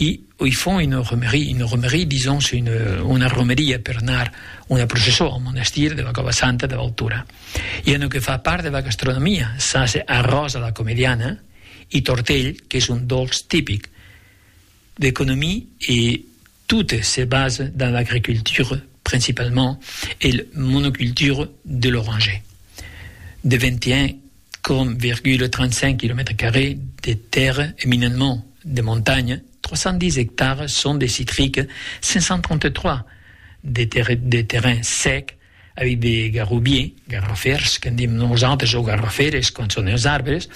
I i fon una romerie, una romerie disons c'est une una romeria per anar una processó al monastir de la Cova Santa de Valtura. I en o que fa part de la gastronomia, ça c'est arròs a la comediana i tortell qu'es un dolç tipic. L'economie e toute se base dans l'agriculture principalement e le monoculture de l'oranger. De 21 4,35 quilomètres carrés de tèrra eminentment de montanha, 310 ectares son de citrica, 533 de, ter de terrain sec, avec de garrobiers, garrofers, que dim nosaltres, o garroferes, quan son els arbres,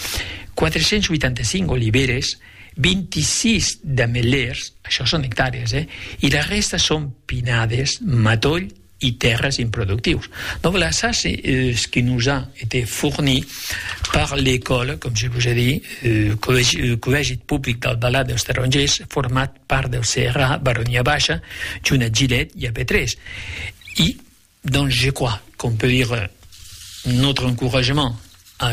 485 oliveres, 26 d'amelers, això son hectàreas, eh? I la resta son pinades, matoll, e tèrres improductius. Donc la sase ce qui nous a été fourni par l'école, comme je vous ai dit, euh, collège public d'Albalat dels Tarongers, format par del CRA, Baronia Baixa, Junat Gilet e a Petrés. E donc je crois qu'on peut dire notre encouragement à